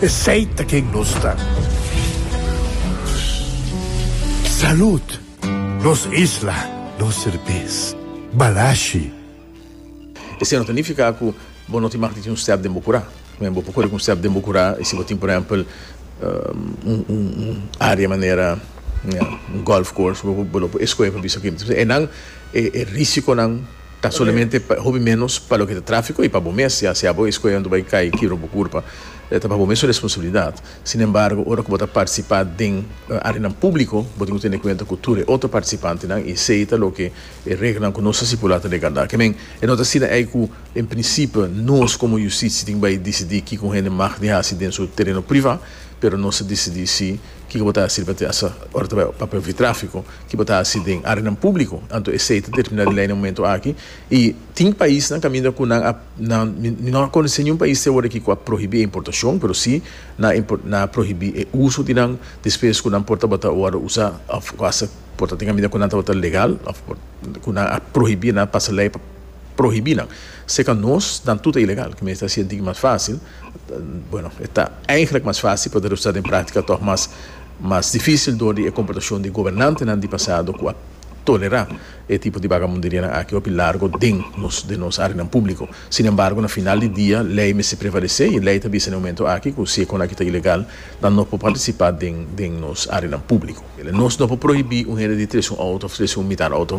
Esey ta ken nos ta. Salud! Nos isla, nos serbes. Balashi. Esey no ta nifica cu bo no tin mag di tin un step den bo cura. Meen, bo por cori cu un step den bo cura y si bo tin, por ehempel, un area manera un golf course, bo lo por escoge pa bisa quindi. Enan e risiconan. Ta solamente pa hopi menos pa loke ta trafiko i pa bo mes, ya sea bo e skoe anto bai kai kibra bo kurpa, ta pa bo mes su responsabilidat. Sin embargo, ora ku bo ta partisipá den areanan públiko, bo tin ku tene kuenta ku tur e otro partisipantenan i esei ta loke e reglanan ku nos ta stipulá ta regardá. Ke men, e no ta asina ei ku en prinsipio nos komo yustisia tin bai disidí kiko un hende mag di hasi den su tereno privá, pero nos ta disidí si. Kiko bo ta hasi riba Tiasa ora ta bai papel di trafiko? Ki bo ta hasi den áreanan públiko? Anto esei ta terminá di lei na e momentu aki. I tin paisnan kaminda ku nan a, nan, mi no a konosé niun pais te aworakí ku a prohibí e importashon, pero sí nan a, nan a prohibí e uso di nan despues ku nan por tabata wòrdu usá òf ku hasta por ta tin kaminda ku nan tabata legal òf por ku nan a prohibí, nan a pasa lei pa prohibí nan. Serka nos nan tur ta ilegal, ke mester hasi e diki mas fásil. Bueno, e ta eigenlik mas fásil pa debí usá den práktika tòg mas mas difísil dor di e komportashon di gobernantenan di pasado ku a tolerá e tipo di bagabunderianan aki hopi largo den nos den nos áreanan públiko. Sin embargo, na final di dia lei mester prevalesé i lei ta bisa den e momentu aki ku si e kosnan aki ta ilegal nan no por partisipá den den nos áreanan públiko. Nos no por prohibí un hende di trese un outo òf trese un mitar outo.